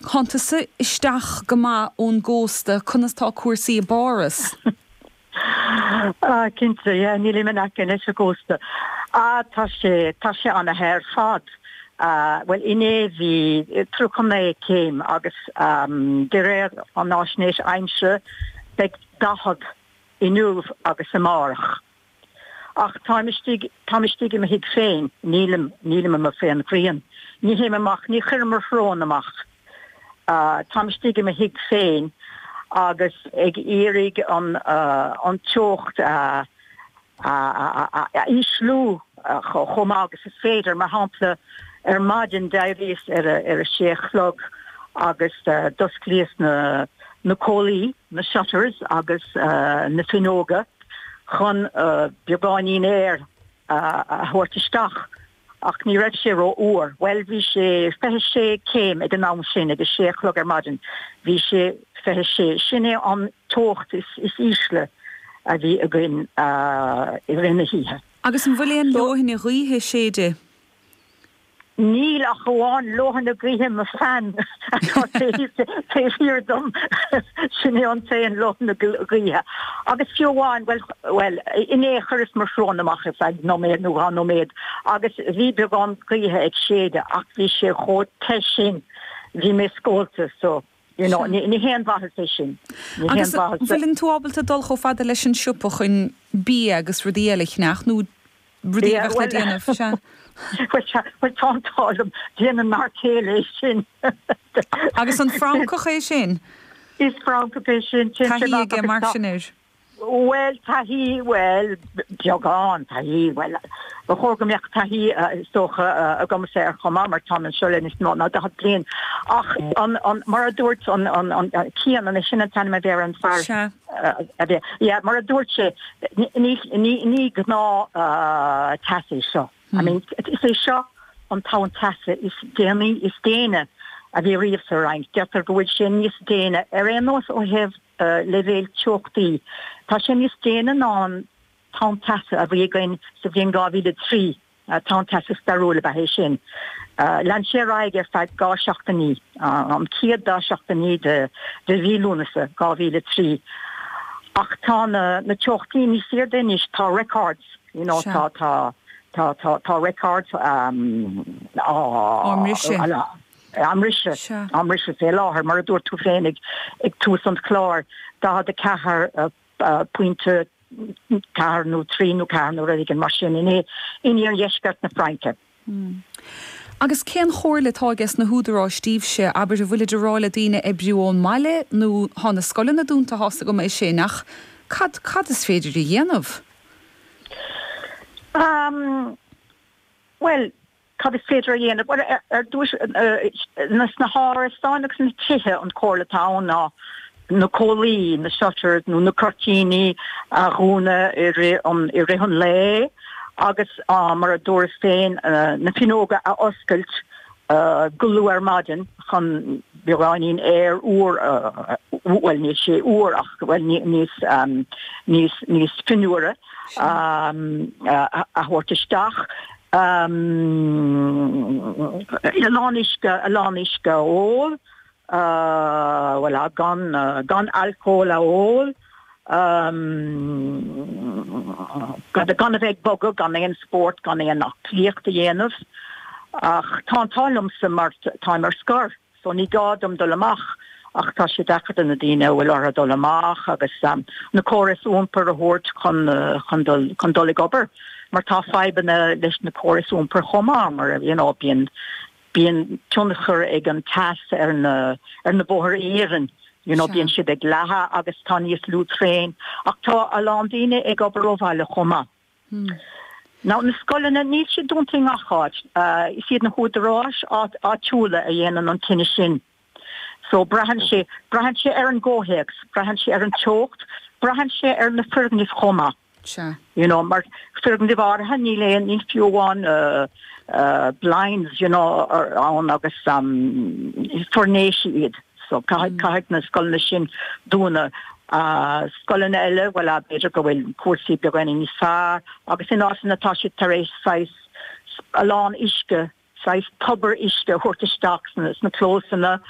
cuntas isteach go maith ón gcósta. Conas tá cúrsaí i bPáras? Ah, cinnte, yeah, nílim in aice leis an gcósta. Ah, tá sé, tá sé ana-the ar fad. Ah, bhuel, inné bhí tríocha naoi céim agus de réir an fháisnéis aimsire beidh daichead inniu agus amárach. Ach táim istigh, táim istigh i mo thigh féin, nílim, nílim amuigh faoin ngrian, ní théim amach, ní chuirim mo shrón amach, táim istigh i mo thigh féin agus ag iarraidh an, an teocht a, a, a, a ísliú chomh maith agus is féidir. Mar shampla, ar maidin d'éiríos ar a, ar a sé a chlog agus d'osclaíos na, na comhlaí, na shutters agus na fuinneoga, chun beagáinín aeir a thabhairt isteach, ach ní raibh sé rófhuar. Bhuel, bhí sé fiche sé céim ag an am sin, ag a sé a chlog ar maidin, bhí sé fiche sé. Sin é an teocht is ísle a bhí againn i rith na hoíche. Agus an bhfuil aon leoithne ghaoithe ag séideadh? Níl ach amháin leoithne gaoithe mo fan atá taobh thiar dom. Sin é an t-aon leoithne gaoithe. Agus fiú amháin, bhuel, bhuel, inné chuireas mo shrón amach ar feadh nóiméad nó dhá nóiméad agus bhí beagán gaoithe ag séideadh ach bhí sé chomh te sin, bhí mé scólta, so. Ní haon mhaitheas é sin. Agus an bhfuileann tú ábalta dul chomh fada leis an siopa chun bia agus rudaí eile a cheannach, nó rudaí a bheadh le déanamh, sea? Bhuel, tá an t-ádh liom, déanann m'fhear céile é sin. Agus an Francach é sin? Is Francach é sin. Taithí aige mar sin air. Bhuel, taithí, bhuel, beagán taithí, bhuel, ba chóir go mbeadh taithí, is dócha, agamsa air chomh maith mar táim anseo le níos mó ná daichead bliain. Ach an, an, mar a dúirt an, an, an, Cian, an é sin an t-ainm a bhí ar an fear Sea. a bhí, yeah, mar a dúirt sé, ní, ní, ní gnáth teas é seo. I mean, is é seo an tonn teasa is déanaí, is déine a bhí ariamh sa Fhrainc. Deirtear go bhfuil sé níos déine ar aon nós ó thaobh, a leibhéal teochtaí. Tá sé níos déine ná an tonn teasa a bhí againn sa bhliain 2003, tonn teasa stairiúil ab ea é sin. Lean sé ar aghaidh ar feadh dhá seachtainí, an chéad dá seachtainí de mhí Lúnasa 2003, ach tá na teochtaí níos airde anois, tá records, you know, tá, tá, tá, tá, tá records á mbriseadh. á mbriseadh, á mbriseadh fé láthair, mar a dúirt tú féin ag tús an chláir, daichead a ceathair pointe, ceathair nó trí nó ceathair nó rud éigin mar sin, in iardheisceart na Fraince. Agus cén chomhairle atá aige sna húdaráis daoibhse, abair, an bhfuil siad ag rá le daoine oibriú ón mbaile nó tá na scoileanna dúnta, tá a fhios agam é sin, ach cad, cad is féidir a dhéanamh? Bhuel. Cad is féidir a dhéanamh? Bhuel, ar dtús, sna hárasáin agus sna tithe, an chomhairle atá ann ná na comhlaí, na shutters nó na cuirtíní, a dhúnadh i rith an lae agus, mar a dúras féin, na finneoga a oscailt go luath ar maidin chun beagáinín aeir úr, bhuel, níl sé úr ach, bhuel, níos fionnuaire, a thabhairt isteach. ii, a lán uisce, a lán uisce a ól, ii, gan, gan alcól a ól, ii, gan a bheith ag bogadh, gan aon spórt, gan aon aclaíocht a dhéanamh, ach tá an t-ádh liomsa mar táim ar scor. so ní gá dom dul amach ach tá sé deacair do na daoine a bhfuil orthu dul amach agus na córais iompair a thabhairt chun chun dul chun dul ag obair mar tá fadhbanna leis na córais iompair chomh maith mar you know bíonn bíonn tionchar ag an teas ar na ar na bóithre in Éirinn you know bíonn siad ag leathadh agus tá níos lú traenacha ach tá a lán daoine ag obair ó bhaile chomh maith. Nó na scoileanna, níl siad dúnta i ngach áit. Is iad na húdaráis áitiúla a dhéanann an cinneadh sin. So, braitheann sé, braitheann sé ar an gcomhthéacs, braitheann sé ar an teocht, braitheann sé ar na foirgnimh chomh maith. Sea. You know, mar foirgnimh áirithe, níl aon, níl fiú amháin blinds, you know, ann agus is foirnéisí iad. So, caith, caithfidh na scoileanna sin dúnadh. Scoileanna eile, bhuel, b'fhéidir go bhfuil cúrsaí beagáinín níos fearr agus in áiteanna tá siad tar éis saghas, a lán uisce, saghas tobar uisce a thabhairt isteach sna clósanna.